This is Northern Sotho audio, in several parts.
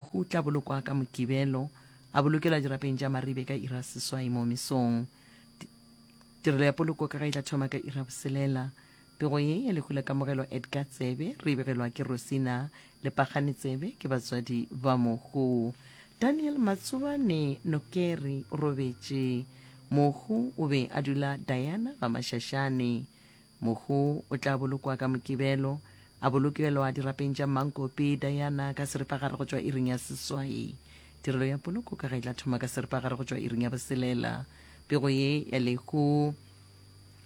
O tla bolokwa ka Mokibelo, a bolokelwa dirapeng tša Maribe ka iri ya seswai moo mesong. Tirelo ya poloko ka ga e tla thoma ka iri ya boselela. Pego ye ya lehu la kamogelo Edgar Tsebe, re e begelwa ke Rosina le Pagane Tsebe, ke batswadi ba mohu. Daniel Matsobane Nokeri o robetše. Mohu o be a dula Diana Gamašašane. Mohu o tla bolokwa ka Mokibelo, a bolokelwa dirapeng tša Mmankopi, Diana ka seripagare go tšwa iring ya seswai. Tirelo ya poloko ka ga e tla thoma ka seripagare go tšwa iring ya boselela. Pego ye ya lehu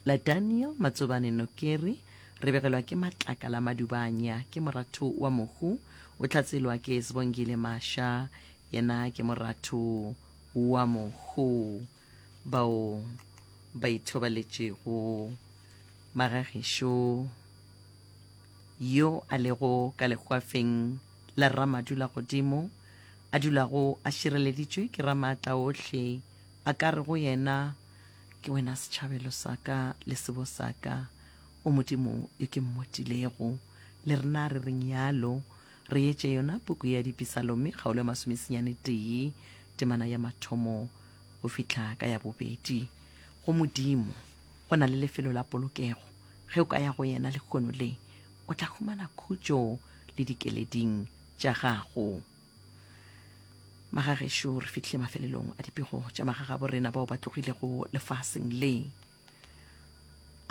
la Daniel Matsobane Nokeri re begelwa ke Matlakala Madubanya, ke moratho wa Mohu, o tlhatselwa ke Sbongile Masha, yena ke moratho wa Mohu. bao ba ithobaletšego Magagišo yo a lego ka legwafeng la Ramadulagodimo, a dulago a šireleditšwe ke Ramaatla ohle, a ka re go yena, Ke wena setšhabelo sa ka le sebo sa ka, O Modimo yo ke mmotilego. Le rena re reng yalo. Re etše yona puku ya Dipisalome kgaolo ya masomesenyane tee temana ya mathomo. go fihla ka ya bobedi go Modimo, go na le lefelo la polokego. Ge o ka ya go yena lekgono le, o tla humana khutšo le dikeleding tša gago. Magagešo, re fihlile mafelelong a dipego tša magagabo rena bao ba tlogilego lefaseng le.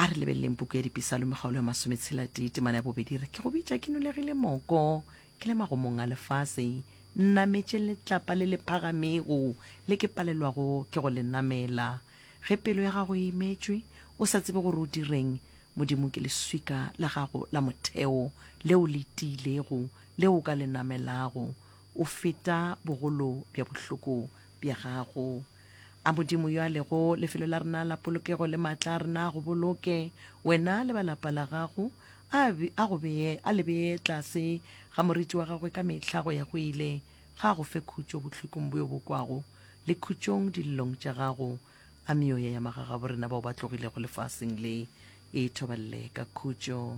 a re lebeleleng puku ya dipisalome kgaolo ya masometshela-tee temana ya bobedi re ke go bitša ke nolegile moko ke le magomong a lefase nnametše letlapa le le phagamego le ke palelwago ke go le namela ge pelo ya gago e imetšwe o sa tsebe gore o direng modimo ke leswika la gago la motheo leo le tiilego leo o ka le namelago o feta bogolo bja bohloko bja gago A Modimo yo a lego lefelo la rena la polokego le maatla a rena a go boloke wena le ba lapa la gago, a, a, go bee, a le bee tlase ga moriti wa gagwe ka mehla go ya go ile, ga a go fe khutšo bohlokong bjo bo kwago le khutšong dilelong tša gago. A meoya ya magagabo rena bao ba tlogilego lefaseng le e thoballe ka khutšo.